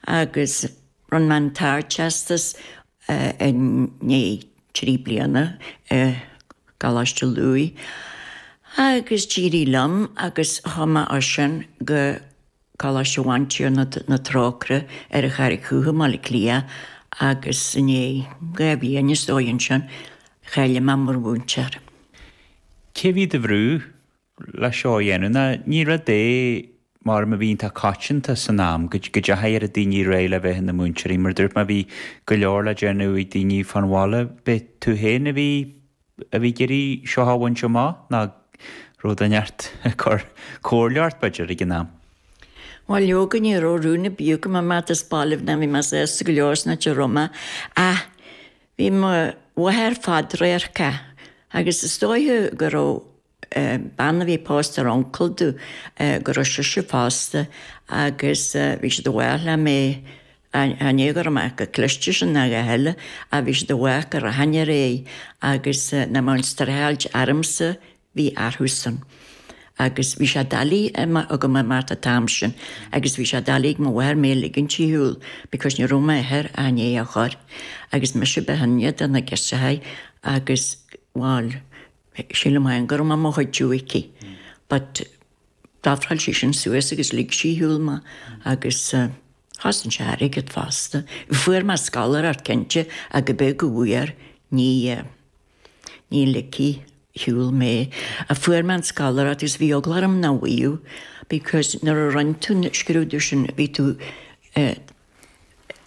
agus rinn mé an tArdteastas i ndiaidh trí bliana i gColáiste Lughaidh agus d'éirigh liom agus chuaigh mé as sin go Coláiste Bhantiarna na Trócaire ar an Charraig Dhubh i mBaile Átha Cliath agus i ndiaidh dhá bhliain is dóigh ansin, cháiligh mé mar mhúinteoir. Cé bhí do bhrú? leis seo a dhéanamh ná ní rud é mar a bhí iontach coitianta san am go dteachaidh daoine ar aghaidh le bheith ina múinteoirí mar a dúirt mé bhí go leor le déanamh ag daoine fán bhaile b'é tú féin a bhí a bhí ag iarraidh seo a bhaint amach nó an raibh daoine thart ag cur comhairle ort b'fhéidir ag an am. Bhuel leoga ní raibh rún ar bith agam imeacht as baile ná bhí mé sásta go leor san áit a raibh mé ach bhí mo mháthair fadradharcach agus is dóiche go raibh bean a bhí pósta ar uncail di, go raibh sise fosta agus bhí siad i bhfách le mé a ní go raibh mé chomh cliste sin ná a dhath eile ach bhí siad i bhfách go rachainn ar aghaidh agus nach mbeadh an streachailt ormsa a bhí orthusan agus bhí sé doiligh agam imeacht an t-am sin agus bhí sé doiligh ag mo mháthair mé a ligint ar shiúl because ní raibh m'athair a ní a chur agus mise ba shine de na girseachaí agus bhfuil Sílim féin go raibh mé i mo chuidiú aici but d'ofráil sí sin suas agus lig sí ar shiúl mé agus chosain sé airgead fosta. Fuair mé scoláireacht cinnte ach go b'é go bhfuair, ní, ní ligfí ar shiúl mé. Fuair mé an scoláireacht agus bhí eagla orm nach bhfuigheadh because nuair a rinn tú an scrúdú sin bhí tú eh,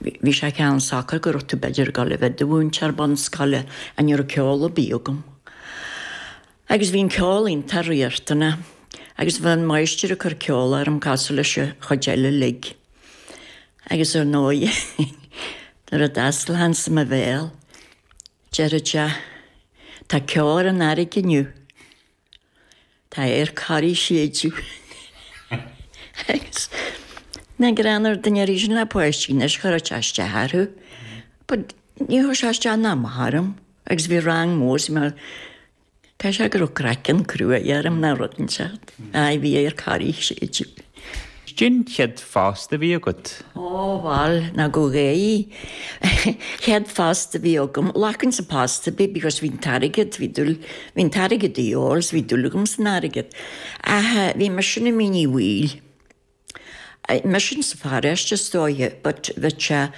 Bhí sé cineál socair go raibh tú b'fhéidir ag dul a bheith i do mhúinteoir bunscoile and ní raibh ceol ar bith agam agus bhí an ceol iontach riachtanach agus bhí an máistir ag cur ceol orm cosúil leis an chuid eile uilig agus ar ndóigh nuair a d'fhosclainnse mo bhéal deireadh sé tá ceo ar an fhairrge inniu. Tá adharc Thoraí ag séideadh agus dá ndéanfadh duine ar bith sin le páistí anois chuirfeadh sé isteach orthu but níor chuir sé isteach ná amach orm agus bhí rang mór sa mar caithfidh sé go raibh craiceann crua orm nó rud inteacht ach bhí adharc Thoraí ag séideadh. Cén chéad phost a bhí agat? Ó, bhal, ná gabh é. Chéad phost a bhí agam. Ghlacfainnse post ar bith because bhí an t-airgead, bhí dul, bhí an t-airgead a fháil so bhí dúil agam san airgead. Ach bhí mise ansin i Mín Uí Bhaoill. Bhí sin sa pharóiste is dóiche but bheadh sé,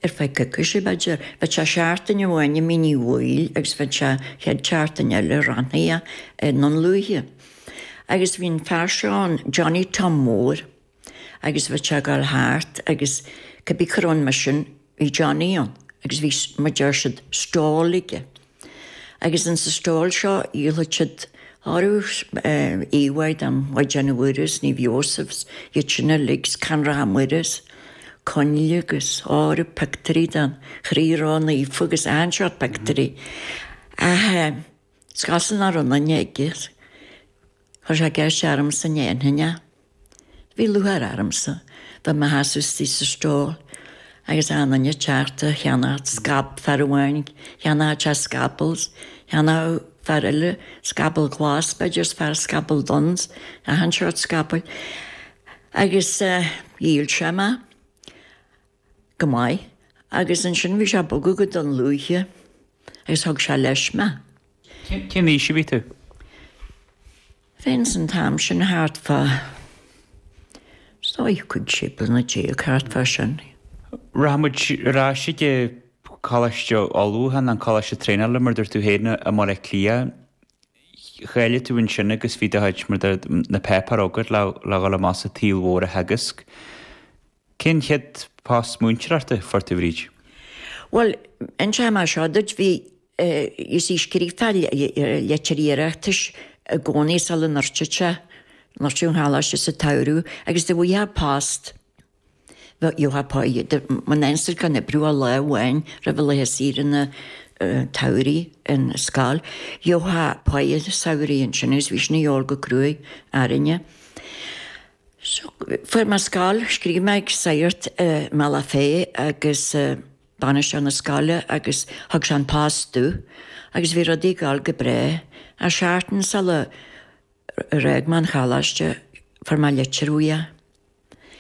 ar feadh coicíse, b'fhéidir, bheadh sé seachtain amháin i Mín Uí Bhaoill agus bheadh sé an chéad seachtain eile ranhaithe i nDún Lúiche. Agus bhí an fear seo ann, Johnny Tom Mhóir, agus bheadh sé ag dul thart agus cibé cur ann mar sin, bhí Johnny ann agus bhí, mar deir siad, stall aige. Agus ins an stall seo dhíolfadh siad arú íomháigh den Mhaighdean Mhuire 's Naomh Iósaef 's iad sin uilig 's corónacha Muire 's coinnle 'gus arú pictiúirí den Chroí Ró Naofa 'gus achan seort pictiúirí. Ach is cosúil nach raibh aon duine aige. Chuir sé ceist ormsa an ndéanfainn é. Bhí lúcháir ormsa i mo sheasamh istigh sa stall agus na daoine ag teacht ag ceannacht scaball, fear amháin cheannódh sé scaball, cheannódh fear eile scaball glas b'fhéidir is fear scaball donn, achan seort scabaill. Agus dhíol sé mé. go maith agus ansin bhí sé ag bogadh go Dún Lúiche agus thug sé leis mé. Cén aois a bhí tú. féin an t-am sin? Thart fá, is dóigh cúig, sé bliana déag, thart fá sin. Rachaidh muid ar ais chuig an Choláiste Ullmhúcháin, an Coláiste Traenála, mar a dúirt tú féin, i mBaile Átha Cliath. Cháiligh tú ansin agus bhí do chuid, mar a deir, na páipéir agat le dhul amach sa tsaol mhór a theagasc. Cén chéad phost múinteoireachta a fuair tú, Bhríd? Bhuel, inseoidh mé seo duit, bhí, you see, scríobhtá leitir iarratais i gcónaí sula ndruideadh sé, dhruid an coláiste sa tsamhradh agus dá bhfaighfeá post, gheofá páighe, when the institute gan oibriú a lá amháin roimh laetha saoire an tsamhraidh in scoil, gheofá páighe samhraidh ansin agus bhí sin a dhíobháil go cruaidh orainne. Fuair mé scoil, scríobh mé chuig sagart i mBealach Féich agus bainisteoir na scoile agus thug sé an post domh agus bhí rudaí ag dul go breá. Ach seachtain sular fhág mé an choláiste fuair mé litir uaidh.